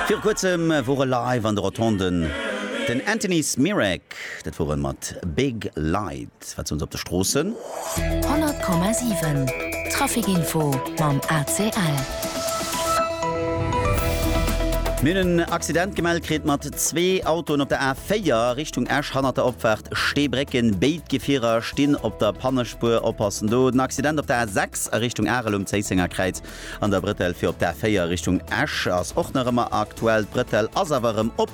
Viru kuerzem wor e live an de Rotonden, den Anthony Smirek. Dat wor e mat Big Light. Wat soen se op de Stroossen? 100,7 Traficinfo mam ACL. Mir hunn en Accident gemellt kritt mat zwee Autoen op der A4 Richtung Esch hannert der Opfaart Steebrécken. Béid Gefierer stinn op der Pannespuer. Oppassen do! Den Accident op der A6 a Richtung Arel um Zéissenger Kräiz. An der Bretelle fir op d'A4 Richtung Esch ass och nach ëmmer aktuell. D'Bretelle ass awer erëm op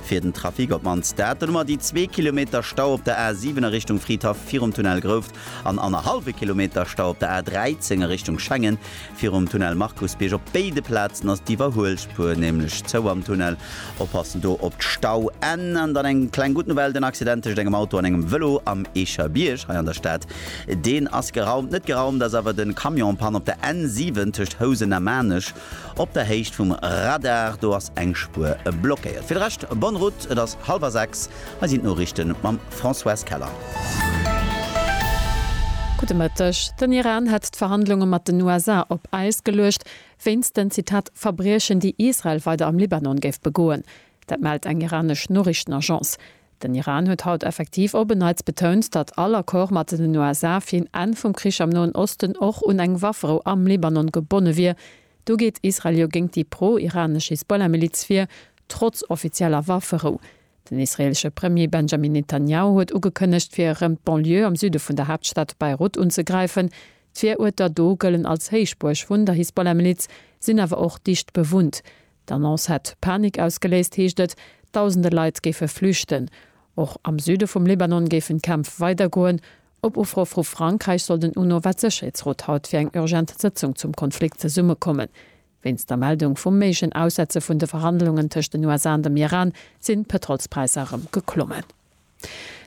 fir den Trafic op mannst dat. Dunn hu mer déi zwee Kilometer Stau op der A7 a Richtung Fridhaff virum Tunnel Grouft an annerhallwe Kilometer Stau op der A13 a Richtung Schengen virum Tunnel Markusbierg. Op béide Plazen ass d'Iwwerhuelspuer nämlech zou am Tunnel. Oppassen do op d'Stauenn. An dann eng kleng gutt Nouvelle, den Accident tëscht engem Auto an engem Vëlo am Eecher Bierg hei an der Stad Deen ass geraumt. Net geraumt ass awer den Camion Panne op der N 7 tëscht Housen a Maarnech op der Héicht vum Radar. Do ass eng Spuer blockéiert. Fir de Rescht bonne route. Et ass hallwer 6. Hei sinn d'Noriichten mam Françoise Keller. Gudde Mëtteg. Den Iran hätt d'Verhandlunge mat den USA op Äis geluecht, wéinst den, Zitat, Verbriechen, déi Israel weider am Libanon géif begoen. Dat mellt eng iranesch Noriichtenagence. Den Iran huet haut effektiv op en Neits betount, datt all Accord mat den USA fir een Enn vum Krich am Noen Osten och un eng Wafferou am Libanon gebonne wier. Do geet Israel jo géint déi pro-iranesch Hisbollah-Miliz vir, trotz offizieller Wafferou. Den israeelesche Premier Benjamin Netanjahu huet ugekënnegt, fir erëm d'Banlieue am Süde vun der Haaptstad Beirut unzegräifen. D'Viruerter do gëllen als Héichbuerg vun der Hisbollah-Miliz, sinn awer och dicht bewunnt. D'Annonce hätt Panik ausgeléist, heescht et. Dausende Leit géife flüchten. Och am Süde vum Libanon géifen d'Kämpf weidergoen. Op Ufro vu Frankräich soll den UNO-Weltsëcherheetsrot haut fir eng urgent Sëtzung zum Konflikt zesummekommen. Wéinst der Meldung vum méiglechen Aussetze vun de Verhandlungen tëscht den USA an dem Iran sinn d'Pëtrolspräisser erëm geklommen.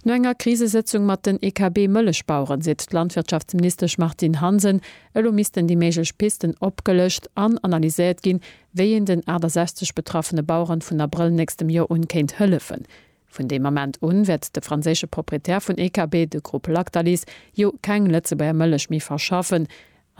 No enger Krisesëtzung mat den EKB-Mëllechbaueren seet d'Landwirtschaftsministesch Martine Hansen, elo missten déi méiglech Pisten opgelëscht an analyséiert ginn, wéi een den 68 betraffene Baueren vun Abrëll nächstem Joer un kéint hëllefen. Vun deem Ament un wäert de franséische Proprietär vun EKB, de Grupp Lactalis, jo keng Lëtzebuerger Mëllech méi verschaffen.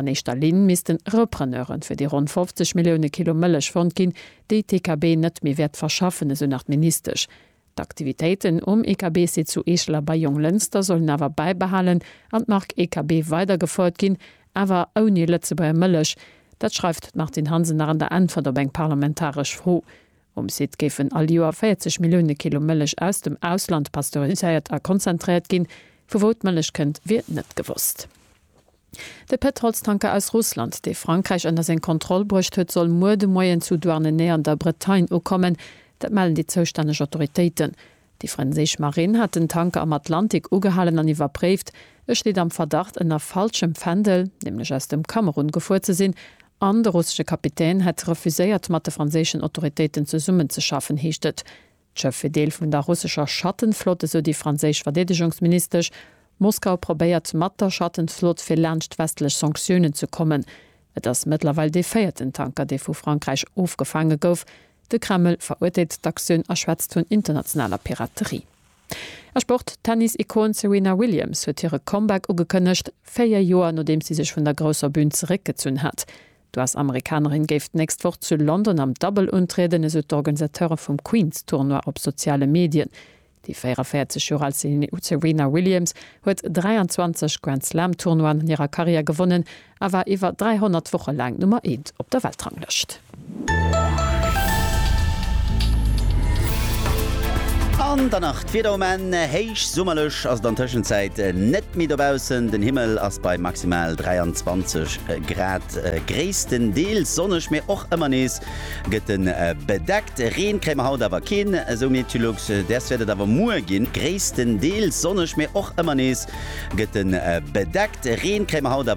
An éischter Linn missten Repreneure fir déi ronn 50 Millioune Kilo Mëllech fonnt ginn, déi d'EKB net méi wäert verschaffen, esou nach d'Ministesch. D'Aktivitéiten um EKB-Site zu Eechel a bei Jonglënster sollen awer bäibehalen an d'Mark EKB weider gefouert ginn, awer ouni Lëtzebuerger Mëllech. Dat schreift d'Martine Hansen nach an der Äntwert op eng parlamentaresch Fro. Um Site géifen all Joer 40 Millioune Kilo Mëllech aus dem Ausland pasteuriséiert a konzentréiert ginn. Vu wou d'Mëllech kënnt, wier net gewosst. De Pëtrolstanker aus Russland, dee Frankräich ënner seng Kontroll bruecht huet, soll muer de Moien zu Douarnenez an der Bretagne ukommen. Dat mellen déi zoustänneg Autoritéiten. Déi franséisch Marinn hat den Tanker am Atlantik ugehalen an iwwerpréift. E steet am Verdacht, ënner falschem Fändel, nämlech aus dem Kamerun, gefuer ze sinn an de russesche Kapitän hätt refuséiert, mat de franséischen Autoritéiten zesummenzeschaffen, heescht et. D'Schëff wier Deel vun der russescher Schattenflott, esou déi franséisch Verdeedegungsministesch. Moskau probéiert mat der Schattenflott fir laanscht westlech Sanktiounen ze kommen. Et ass mëttlerweil dee véierten Tanker, dee vu Frankräich ofgefaange gouf. De Kreml verurteelt d'Aktioun a schwätzt vun internationaler Piraterie. A Sport, D'Tennis-Ikon Serena Williams huet hire Comeback ugekënnegt, véier Joer nodeems si sech vun der grousser Bün zeréckgezunn hat. D'US-Amerikanerin géif d'nächst Woch zu London am Double untrieden, esou d'Organisateure vum Queens-Tournoi op soziale Medien. Déi 44 Joer al Serena Williams huet 23 Grand-Slam-Tournoien an hirer Karriär gewonnen a war iwwer 300 Woche laang Nummer eent op der Weltranglëscht. An dann nach D'Wieder um Enn, Héich summerlech ass et an Tëschenzäit net méi dobaussen. Den Himmel ass bei maximal 23 Grad gréisstendeels sonneg, mee och ëmmer nees gëtt e bedeckt. Reen kréie mer haut awer keen, esou Meteolux. Däers wäert et awer muer ginn, gréisstendeels sonneg, mee och ëmmer nees gëtt e bedeckt. Reen kréie mer haut.